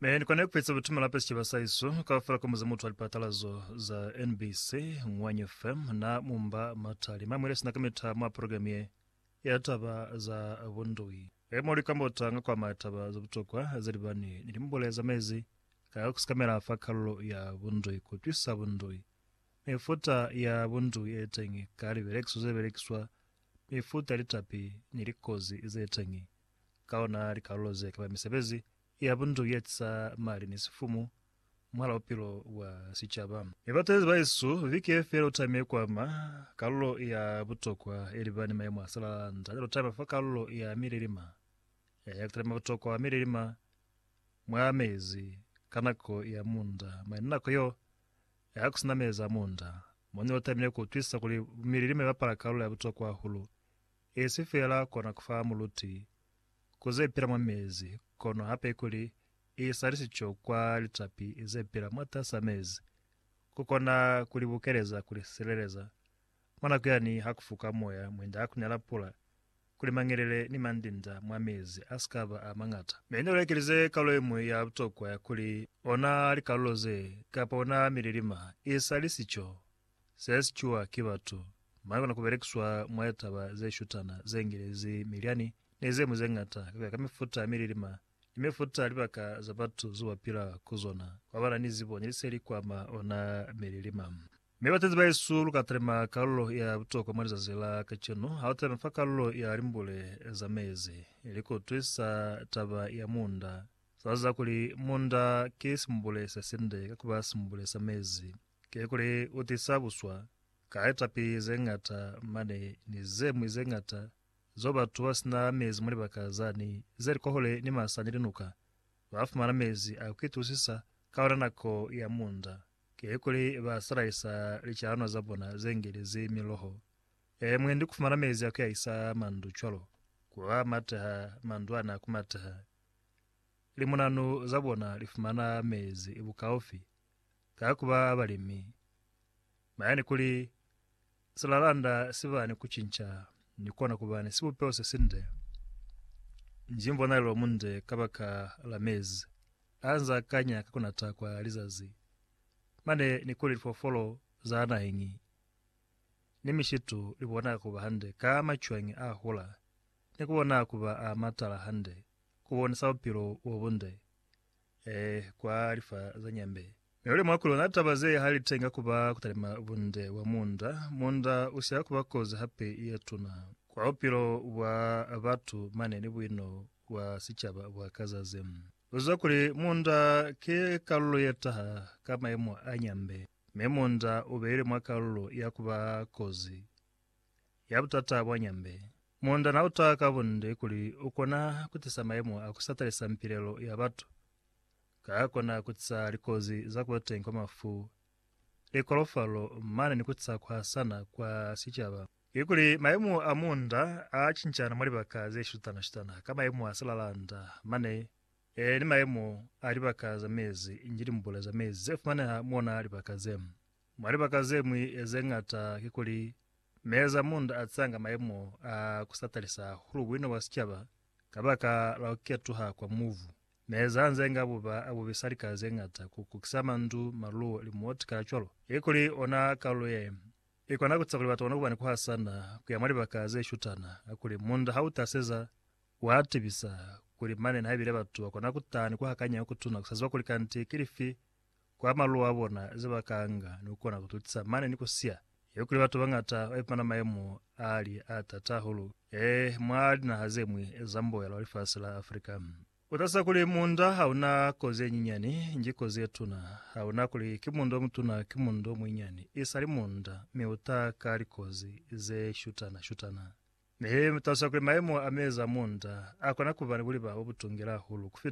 Me ni kona kueza butumela pa sicaba sa iso kaufela ka muze mutu wa lipatalazo za NBC, Ngwanya FM na mumba matali. Ma mwile sina ka mita mwa program ye ya taba za bundui. E mo likambota nga kwa ma taba za butokwa za libani ni limbule za mezi ka kusikamela fa kalulo ya bundui, kutwisa bundui, mifuta ya bundui e teñi ka libelekiso ze belekiswa, mifuta ya litapi ni likozi ze teñi. ka ona likalulo ze kaba misebezi ya bundu ye tisa mali ni sifumu mwahala bupilo bwa sicaba. Mi batezi ba Yesu bike fela u tamile ku ama kalulo ya butokwa ye liba ni mayemo a salala nda calo taba fa kalulo ya mililima ya ku talima butokwa mililima mwa mezi ka nako ya munda mwa yona nako yo ya ku sina mezi a munda. Moni o tamile ku utwisa kuli bumililima bapala kalulo ya butokwa hahulu Esi fela kona kufa muluti ku ze pila mwa mezi, kono hape kuli isa lisico kwa litapi ze pila mwatas'a mezi, ku kona ku li bukeleza ku li sileleza mwa nako yani ha ku fuka moya mwinda ha ku nela pula, kuli mangelele ni mandinda mwa mezi a si ka ba a mañata. Mi ni lekelize kalulo ye ñwi ya butokwa ya kuli ona likalulo ze, kapa ona mililima, isa lisico. Ze sikiwa ki batu. Mwa kona ku belekiswa mwa litaba ze shutana, ze ngelezi, milyani, ni ze ñwi ze ñata, ka ku ya ka mifuta ya mililima ni mifuta ya libaka za batu zo ba pila ku zona, kwa ba na ni zibo ni liseli kwa ma ona mililima. Mi batendi bahesu, lu ka talima kalulo ya butokwa mwa lizazi la kacenu. Ha lu talima fa kalulo ya limbule za mezi, li ku twisa taba ya munda. Sa ziba kuli munda ki simbule se sinde ka ku ba simbule sa mezi. Kikuli u tisa buswa ka litapi ze ñata mane ni ze ñwi ze ñata zeo batu ba si na mezi mwa libaka zani ze li kohule ni masa ni linuka ba fumana mezi a ku itusisa ka ona nako ya munda. Kikuli ba salaisa licalanwa za bona ze ngelezi miloho e mwendi ku fumana mezi a ku yahisa mandu cwalo ku a mateha mandu ani a ku mateha. Limunanu za bona li fumana mezi bukaufi Ka ku ba balimi, bayani kuli silalanda si ba ni ku cinca ni kona ku ba ni sibupeho se sinde, nji mbonalelo munde kabaka la mezi a nz'a kanya ka ku nata kwa lizazi, mane ni kuli lifoofolo za naheñi ni mishitu li bona ku ba hande ka macwañi a hula ni ku bona ku ba a matala hande, ku bonisa bupilo bo bunde. Ee, kwa lifa za nyambe. Mi luli mwa kulona taba ze ha litenga kuba kutalima bunde bwa munda. Munda usiha kuba kozi hape yetuna kwa bupilo bwa batu mane ni buino bwa sicaba bwa ka zazi. Luzwa kuli munda ki kalulo yetaha ka maimo a nyambe, mi munda ubeile mwa kalulo ya kuba kozi. ya butata bwa nyambe. Munda na uta ka bunde kuli u kona ku tisa mayemo a ku sa talisa mpilelo ya batu, ka a kona ku tisa likozi za ku ba teñi kwa mafu, likolofalo, mane ni ku tisa ku hasana kwa sicaba. Kikuli mayemo a munda a cincana mwa libaka ze shutana-shutana ka mayemo a silalanda mane e ni mayemo a libaka za mezi inge limbule za mezi ze fumaneha mwa libaka ze. Mwa libaka ze ñwi ze ñata kikuli meeza munda a tsanga mayemo a ku sa talisa hahulu buina bwa sicaba kabaka la ku ketuha kwa mubu. Meeza anze nga buba a bubisa lika ze ñata ku kukisa mandu, maluo, limuoti kacwalo. Kikuli ona kalulo ye i kona ku tisa kuli batu ba kone kuba ni ku hasana ku ya mwa libaka ze shutana, kakuli munda ha u taseza, wa tibisa kuli mane nihaibile batu ba kona ku taha ni ku hakanya ku kutuna ku sa ziba kuli kanti ki lifi kwa maluo a bona ze ba ka nga ni ku kona ku tutisa mane ni ku siya. Ye kuli batu bañata ba ipumana mayemo a li a tata hahulu ee mwa linaha ze ñwi za mboela wa lifasi la Africa. Ku talusa kuli munda ha una kozi ye nyinyani, nji kozi ye tuna. Ha una kuli ki munda o mutuna ki munda o muinyani, i sali munda, mi u ta ka likozi ze shutana-shutana. Mi talusa kuli mayemo a mezi a munda a kona ku ba ni buliba bo butungela hahulu ku fita.